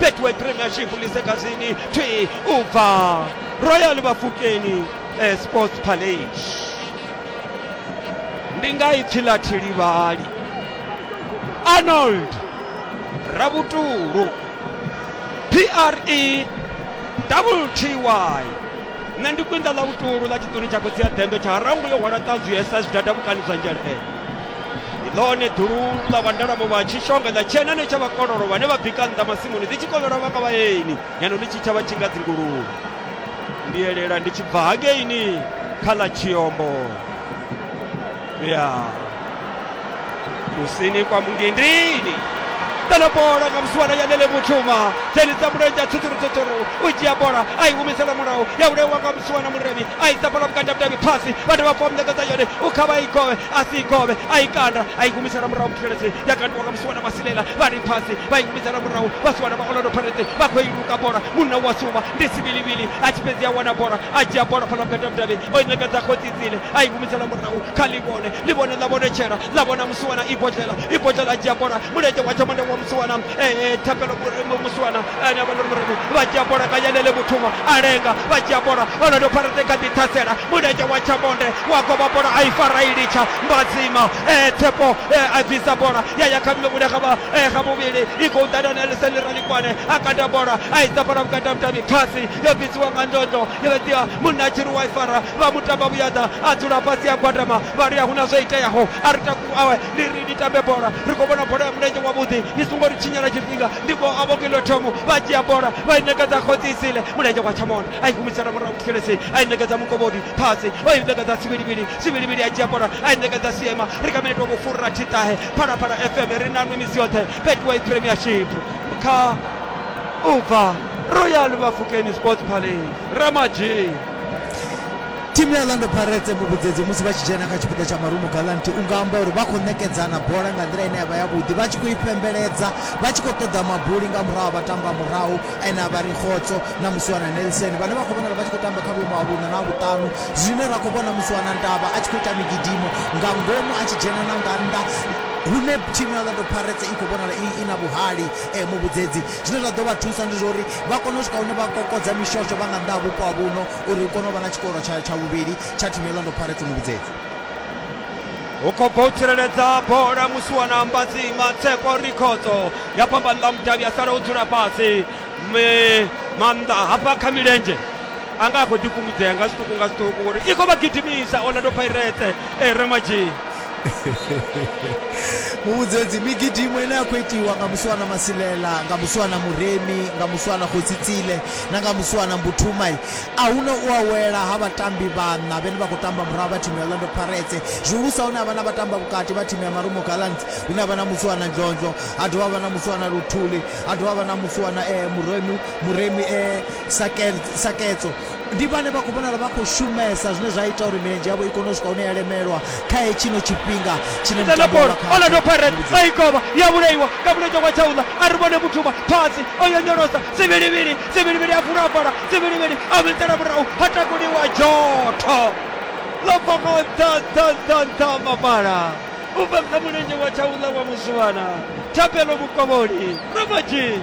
betway premiership lisegazini thi ubva royal bafukeni eh, sports palage ndi nga ipfi ḽa thilivhali arnold rabutulu pre wty nṋe ndi kwinda ḽa vhutulu ḽa tshiṱuni tsha khotsi ya dembe tsha harangu yo hwala ṱanzwi ya sa zwidada vhukani zwa nzhelele ndi ḽone ḓulu ḽa vhandalamu vha tshishonga ḽa tshienane tsha vhakololo vhane vha bika nnḓa masimuni ḽi tshi kovhelwa vha nga vhaeni ngeno ḽi tshi tshavha tshinga dzinguluvhe ndi elela ndi tshi bva hakeini kha ḽa tshiombo ya kusini kwa mungindini ḓana bola nga musiwana ya lele muthuma dzhenisa mulenzhe a tshutshurutshutsuru u dzhia bola a i humisela murahu ya ulewa nga musiwana muremi a isa bola vhukati ha vhudavhi phasi vhane vha fomnekeza yone u kha vha i gove a si ikovhe a i kanda a i humisela murahu muxelese ya kandiwa nga musiwana masilela vha ri phasi vha i humisela murahu vhasiwana vha orlando pharete vha khou i luka bola munna wa suma ndi sivilivili a tshi fhedzi a wana bola a dzhia bola fhala vhukati ha mudavhi o i ṋekedza khotsitsile a i humisela murahu kha livhone livhone ḽa vhonetshela ḽa vhona musiwana ibodlela ibodlela a dzhia bola mulenzhe wa tshamanda wa musiwana eh, thapelo musiwana ane avha nori murabi vha dzhia bola nga yanele muthuma a lenga vha dzhia bola onodo pharete kha ḓithasela mulenzhe wa tshamonde wa goba bola a i fara i litsha mbadzima eh, thepo eh, a bvisa bola ya ya kha mmevhule kha vha eh, kha muvhili i khou ḓana na eliseni ralikwane a kanda bola a isa bola vhukanda mutami khasi yo bvisiwa nga ndondo yo ḓia munna a tshi ri wa i fara vha mutamba vhuyaḓa a dzula fhasi a gwadama vha ri a huna zwo iteaho a ri taku awe ndi ri ni tambe bola ri khou vhona bola ya mulenzhe wavhuḓi ni songo ri tshinyela tshifhinga ndi vho a vhokilo thomo vha dzhia bola vha i ṋekedza khotsisile mulenzhe wa tshamona a i humisela murahu kuselesi a i ṋekedza mukovhodi phasi o i ṋekedza sivhilivhili sivhilivhili a dzhia bola a i ṋekedza siema ri kha minete wa vhufurira thiṱahe phalaphala fm ri nanwi misi yoṱhe betway premiership kha u bva royal vhafukeni sports palace ramadzhii Thimu ya Orlando Pirates muvhudzedzi musi vha tshi dzhena kha tshipiḓa tsha Marumo Gallants u nga amba uri vha khou ṋekedzana bola nga nḓila ine ya vha yavhuḓi vha tshi khou i pembeledza vha tshi khou ṱoḓa mabuli nga murahu ha vhatamba murahu ane a vha ri Khotso na Musiwana Nelson vhane vha khou vhonala vha tshi khou tamba kha vhuimo ha vhuṋa na vhuṱanu zwine ra khou vhona Musiwana Ndaba a tshi khou ita migidimo nga ngomu a tshi dzhena na nga nnḓa hune thimu ya Orlando Pirates i khou vhonala i na vhuhali eh, muvhudzedzi zwine zwa ḓo vha thusa ndi zwa uri vha kone u swika hune vha kokodza mishosho vha nga nnḓa ha vhupo ha vhuno uri hu kone u vha na tshikoro tsha tsha vhuvhili tsha thimu ya Orlando Pirates muvhidzedzi hu khou bva u tsireledza bola musi wa na mbadzima tsepo rikhodzo ya fhambanḓa mudavhi a sala o dzula fhasi maanḓa hafha kha milenzhe a nga a khou ḓifhungudzea nga zwiṱuku nga zwiṱuku uri i khou vha gidimisa orlando pirates e remadzhini muvhudzedzi migidimo ine ya khou itiwa nga musi wana masilela nga musi wana muremi nga musi wana khotsitsile na nga musi wana mbuthumai a huna u awela ha vhatambi vhanna vhene vha khou tamba murahu vha thimu ya orlando paretse zwihulusa hune ha vha na vhatamba vhukati vha thimu ya marumo galants hune ha vha na musi wana nzonzo ha dovha vha na musi wana luthuli ha dovha vha na musi wana eh, muremi muremi eh, saketso ndi vhane vha khou vhonala vha khou shumesa zwine zwa ita uri milenzhe yavho i kone u swika hune ya lemelwa kha hetshino tshifhinga tshine Ita na mutambo wa bola vha khatsho. Orlando Pirates a i kovha ya vhulaiwa nga mulenzhe wa Tshaula a ri vhone Muthuma phasi o yonyolosa sivhilivhili sivhilivhili a vula bola sivhilivhili a vhilitela murahu ha takuliwa dzhotho ḽo bva nga nṱha nṱha nṱha nṱha ha mapala u bva kha mulenzhe wa Tshaula wa Muswana Thapelo Mukovholi Ramadzhi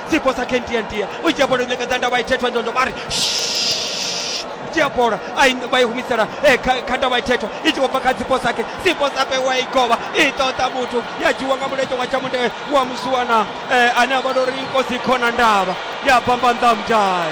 dzipo sa khendiandia u dzhia bola u ṋekedza ndavha ithetho ndondo vha ri "Shh." dzhia bola a i- vha i humisela eh, kha kha ndavha ithetho i tshi khou bva kha dzipo sake dzipo sape wa i govha i ṱoḓa muthu ya dzhiwa nga mulenzhe wa tshamunde wa musiwana eh, ane a vha lori nkosi khona ndavha ya bamba nḓamudai